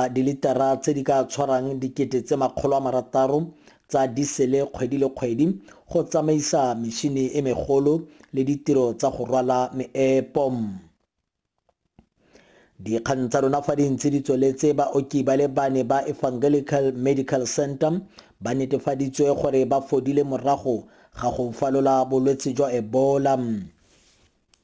a dilitara tse di ka tshwarang dikete tse makgolo a marataro tsa disele kgwedi le kgwedi go tsamaisa mešini e megolo le ditiro tsa go rwala meepo. Dikgang tsa rona fa di ntse di tsweletse baoki ba le bane ba Evangelical Medical Centre ba netefaditswe gore ba fodile morago ga go falola bolwetse jwa Ebola.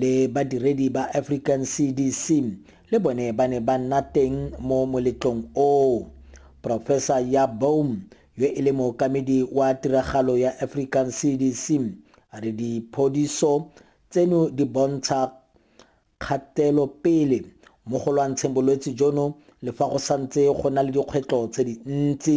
le badiredi ba African CDC le bone ba ne ba nna teng mo moletlong oo. Profesa Ya Boehm, yo e le mookamedi wa tiragalo ya African CDC, a re diphodiso tseno di bontsha kgatelopele mo go lwantsheng bolwetse jono le fa go santse go na le dikgwetlho tse dintsi.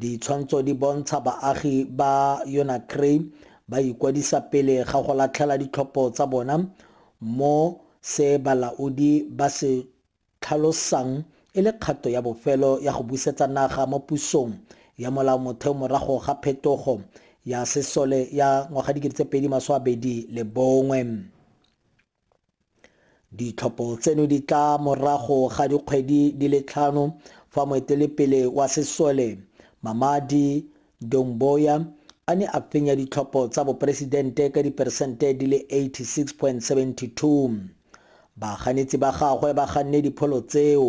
Ditshwantsho di bontsha baagi ba Yonakray ba ikwadisa pele ga go latlhela ditlhopho tsa bona mo se balaodi ba se tlhalosang e le kgato ya bofelo ya go busetsa naga mo pusong ya molaomotheo morago ga phetogo ya sesole ya ngwaga 2021. Ditlhopho tseno di tla morago ga dikgwedi di le tlhano fa moetelepele wa sesole Mamadi Doumbouya a ne a fenya ditlhopho tsa boporesidente ka diperesente di le 86.72. Baganetsi ba gagwe ba ganne dipholo tseo,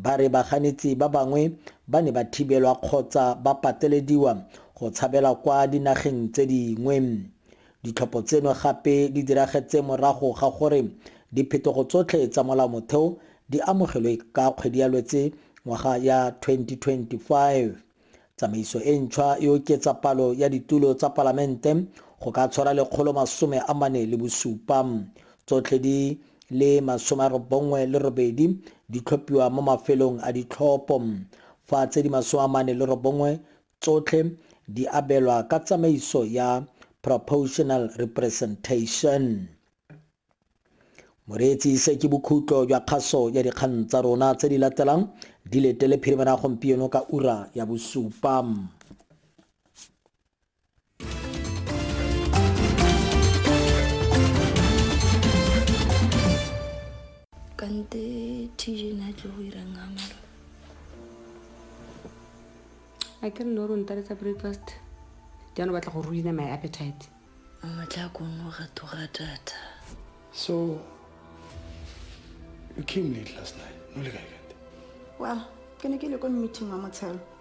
ba re baganetsi ba bangwe ba ne ba thibelwa kgotsa ba patelediwa go tshabela kwa dinageng tse dingwe. Ditlhopho tseno gape di diragetse morago ga gore diphetogo tsotlhe tsa molaomotheo di amogelwe ka kgwedi ya Lwetse ngwaga ya 2025. Tsamaiso e ntšhwa e oketsa palo ya ditulo tsa Palamente go ka tshwara lekgolo masome a mane le bosupa. Tsotlhe di le masome a robongwe le robedi di tlhophiwa mo mafelong a ditlhopho, fa tse di masome a mane le robongwe tsotlhe di abelwa ka tsamaiso ya proportional representation. Moreetsi se ke bokhutlo jwa kgaso ya dikgang tsa rona tse di latelang di letele phirimana gompieno ka ura ya bosupa. kante tj na tlo go irang ga mara a ke re le gore o ntaletsa breakfast jaanong batla go ruina my appetite mmatla a kongwe ga toga data so you came late last night no le kae kante wa ke ne ke le ko meeting wa motshelo